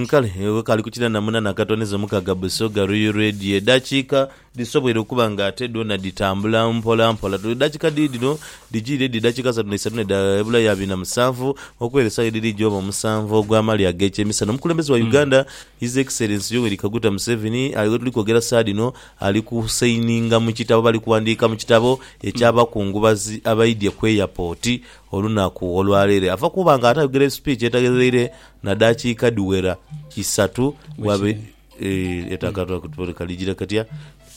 Kale wekaali ku kinana munana katoni zo mukaga Busoga Royal Radio edhakiika dhisoboire okuba nga ate dhoona dhitambula mpola mpola. Edhakiika dhiri dhino dhijiire dhi dhakiika asatu na isatu nedha ebulayo abiri na musanvu okwera esawa edhiri gyobe omusanvu ogwa mali agekyemisana. Omukulembeze wa Uganda His Excellency Yoweri Kaguta Museveni ali wetuli kwogera saha dhino ali ku sayininga mu kitabo oba ali kuwandiika mu kitabo ekya bakungubazi abaidhye ku Airport olunaku olwaleere ava kuba nga atayogere speech etaghereire na dakiika dhiwera isatu bwabe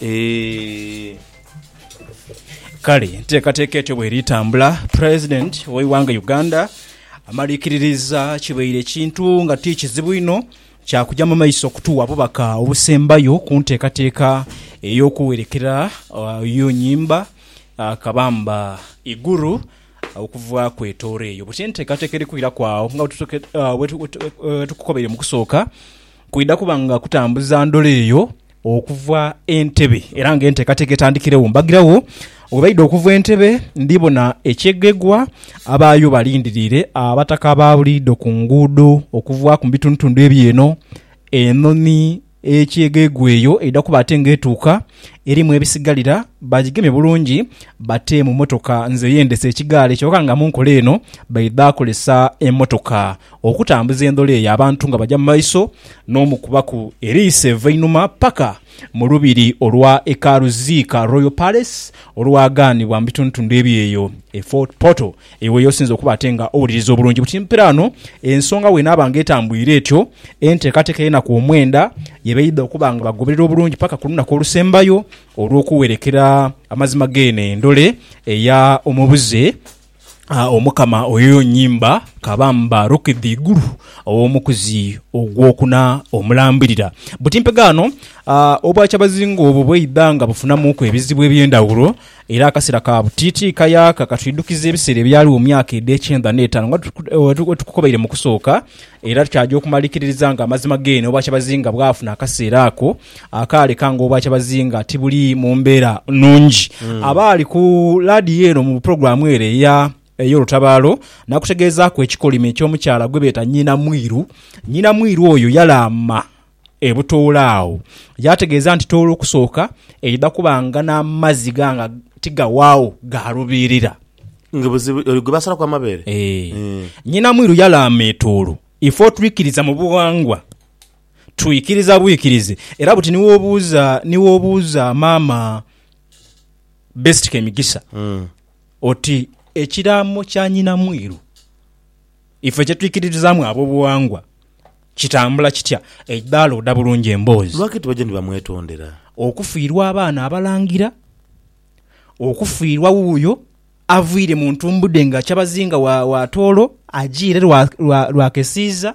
eeh. Kale enteekateeka etyo bweri tambula, president w'eighanga Uganda amaliikiririza kibaire kintu nga ti kizibu inho, Kya kuja mu maiso okutuwa obubaka obusembayo ku nteekateeka ey'okuwerekera Oyo Nyimba Kabamba Iguru okuva ku etooro eyo. Bwetyo enteekateeka eri kwiraku agho nga bwetukobaire mu kusooka, kwidha kuba nga kutambuza ndhula eyo Okuva e Ntebe era nga enteekateeka etandikiregho mbagiragho. Bwe baidha okuva e Ntebe ndhi bona ekyegegwa abaayo balindiriire abataka ba buliidho ku nguudo okuvaaku mu bitundhutundu eby'eno. Enhonhi ey'ekyegegwa eyo eidha kuba ate nga etuuka erimu ebisigalira bagigemye bulungi bate mu mmotoka. Nze yendese ekigaali kyoka nga mu nkola eno baidha kozesa emmotoka. Okutambuza endhola eyo abantu nga baja mu maiso n'omukubaku eriiso eva einhuma paka mu lubiri olwa Ekaalu Ziika, Royal Palace, olwagaanibwa mu bitundutundu ebyeyo e Fort Portal. Eyo weyoosinze okuba ate nga owuliriza obulungi buti mpira ano ensonga bwenaaba nga etambwire etyo, enteekateeka ey'enaku omwenda yebaidha okuba nga bagoberera obulungi paka ku lunaku olusembayo olw'okuwerekera amazima g'eno endhole eya Omubuze. Omukama oyo nyimba ka bamba rokidha igulu ow'omukuzi ogwokuna omulambirira. Buti mpegaano, obwakyabazinga obwo bweidha nga bufunamuuku ebizibu eby'endhawulo era akasera ka buti ti kayaaka katwidhukiza ebiseera ebyaligho mu myaka edh'ekyendha n'etaanu nga bwetukukobaire mu kusooka era kyaja okumalikiririza nga amazima geenhe obwakyabazinga bwafuna akaseera ako Akaale kange obwa kyabazinga tibuli mu mbeera nnungi. Abaali ku laadiyo eno mu pulogulaamu ere eya ey'olutabaalo nakutegeezaaku ekikolimo eky'omukyala gwe beeta Nnyina Mwiru. Nnyina Mwiru oyo yalaama e Butoolo agho yaategeeza nti Tooro okusooka eidha kuba nga n'amazzi ga nga tigawaagho ga lubiirira. Nga buzibu oyo gwe basalaku amabeere. Eeh. Nnyina Mwiru yalaama e Tooro. Ife otwikiriza mu bughangwa. Twikiriza bwikirizi era buti ni wobuuza ni wobuuza maama Best Kemigisa oti ekiraamo kya Nyinamwiru ife kye twikiririzaamu ab'obuwangwa kitambula kitya, eidaala oda bulungi emboozi. Lwaki tibajja ni bamwetondera? Okufiirwa abaana abalangira, okufiirwa wuuyo aviire mu ntumbudhe nga Kyabazinga wa wa Tooro ajiire lwa lwa lwa kesiiza,